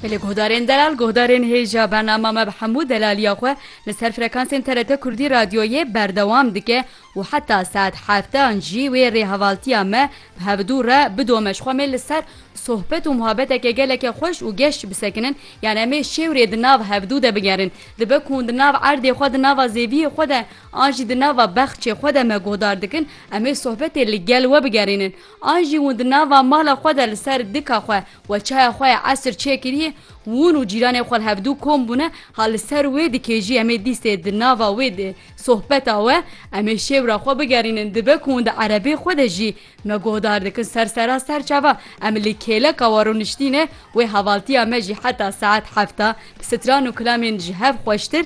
Li guhdarên delal guhdarên hêja bernama me bi hemû delaliya xwe li ser frekansên TRT Kurdî Radyoyê berdewam dike û heta saet heftan jî wê rêhevaltiya me bi hevdû re bidome ji xwe mê li ser sohbet û muhabeteke geleke xweş û geş bisekinin yan em ê şêwrê di nav hevdû de bigerin dibe ku hûn di nav erdê xwe di nava zêviyê xwe de an jî di nava bexçê xwe de me guhdar dikin em ê sohbetê li gel we bigerînin An jî hûn di nava mala xwe de li ser dika xwe we çaya xwe ya esr çêkirîyê, hûn û cîranê xwe li hevdû kom bûne, ha li ser wê dikê jî em ê dîstê di nava wê di sohbeta we em ê şêwra xwe bigerînin, dibe ku hûn di erebê xwe de jî me guhdar dikin ser sera ser çava em li kêleka we rûniştîne wê hevaltîya me jî heta saet hefta bi stran û kilamên ji hev xweştir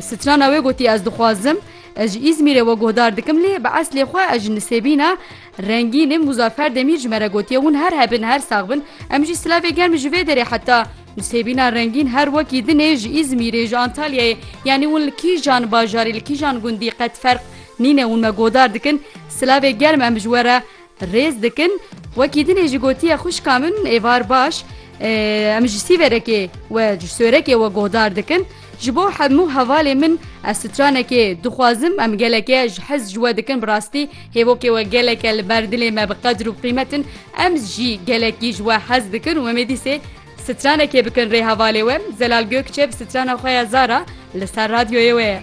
Strana wê gotiye ez dixwazim ez ji Îzmîrê we guhdar dikim lê bi eslê xwe ez ji Nisêbîna rengîn im Muzaffer Demîr ji me re gotiye hûn her hebin her sax bin em jî silavê germ ji vê derê heta Nisêbîna rengîn her wekî din ê ji Îzmîrê ji Antalyayê yanî hûn li kîjan bajarî li kîjan gundî qet ferq nîne hûn me guhdar dikin silavê germ em ji we re Rêz dikin, wekî dinê jî gotiye xwişka min êvar baş e, em ji sîverekê we ji sorekê we guhdar dikin. Ji bo hemû hevalê min ez stranekê dixwazim, em geleke ji hez ji we dikin bi rastî hêvokê we geleke li ber dilê me bi qedir û qîmet in. Em jî gelekî ji we hez dikin û em ê dîsê stranekê bikin rê hevalê we. Zelal Gökçe bi strana xwe ya Zara li ser radyoyê we ye.